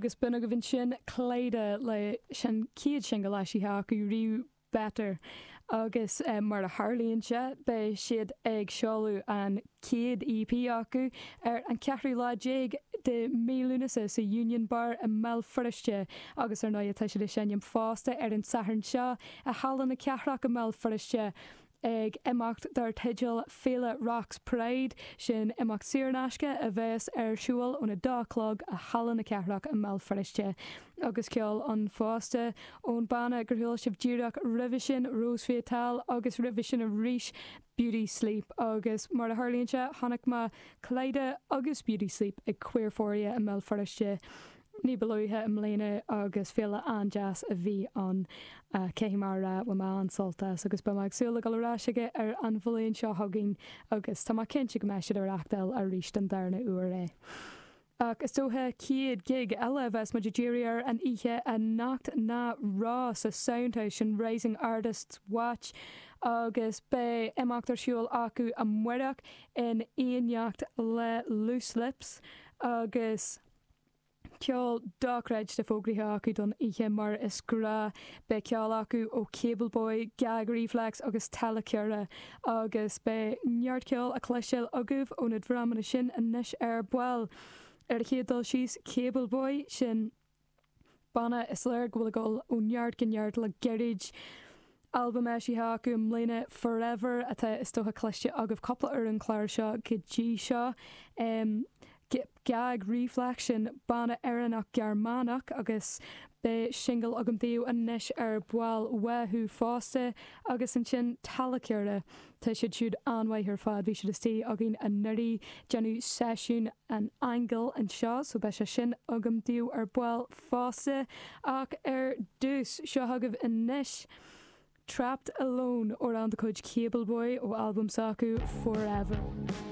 agus b'in agaibh ansin Klyda leis an chéad singil eisithe acu riamh, Better, agus mar a tharlaíonn sé, beidh siad ag seoladh an chéad EP acu ar an cheathrú lá déag de Mhí Lúnasa sa Union Bar i mBéal Feirste, agus ar ndóigh tá siad ag seinm fosta ar an Satharn seo i Halla na Cathrach i mBéal Feirste, ag imeacht dar teideal Féile Rocks Pride, sin imeacht saor in aisce a bheas ar siúil óna dó a chlog i Halla na Cathrach i mBéal Feirste. Agus ceol ann fosta, ón banna gur chuala sibh díreach roimhe sin, Ros Vital, agus roimhe sin arís, Beauty Sleep. Agus mar a tharlaíonn sé, chonaic mé Klyda agus Beauty Sleep ag Queerphoria i mBéal Feirste, ní ba luaithe i mbliana agus féile an-deas a bhí ann. Caithfidh mé a rá, bhain mé an-sult as agus beidh mé ag súil le dul ar ais chuige ar an bhliain seo chugainn agus tá mé cinnte go mbeidh siad ag reachtáil arís don darna uair é. Ach is dócha chéad gig eile a bheas muid ag díriú air an oíche anocht ná Raw sa Sound House, an Rising Artists Watch agus beidh imeacht ar siúl acu amárach in éineacht le Loose Lips agus. ceol dochreidte fógraithe acu don oíche mar is gnách. Beidh ceol acu ó Cable Boy, Gag Reflex agus Talla Cera agus beidh neart ceoil le cloisteáil agaibh ó na dreamanna sin anois ar ball. Ar an chéad dul síos, Cable Boy, sin. Banna is léir go bhfuil ag dul ó neart go neart le gairid. Albam eisithe acu i mbliana, Forever, atá is dócha cloiste agaibh cúpla uair ar an chlár seo go dtí seo. Gag Reflex, sin banna Éireannach Gearmánach agus beidh singil agam daoibh anois ar ball uathu fosta. Agus ansin Talakehre. Tá siad siúd an-mhaith ar fad. Bhí siad istigh againn anuraidh. ag déanamh seisiún an aingil anseo, so beidh sé sin agam daoibh ar ball fosta. Ach ar dtús, seo chugaibh anois Trapped Alone, amhrán de chuid Cable Boy ó albam s'acu Forever.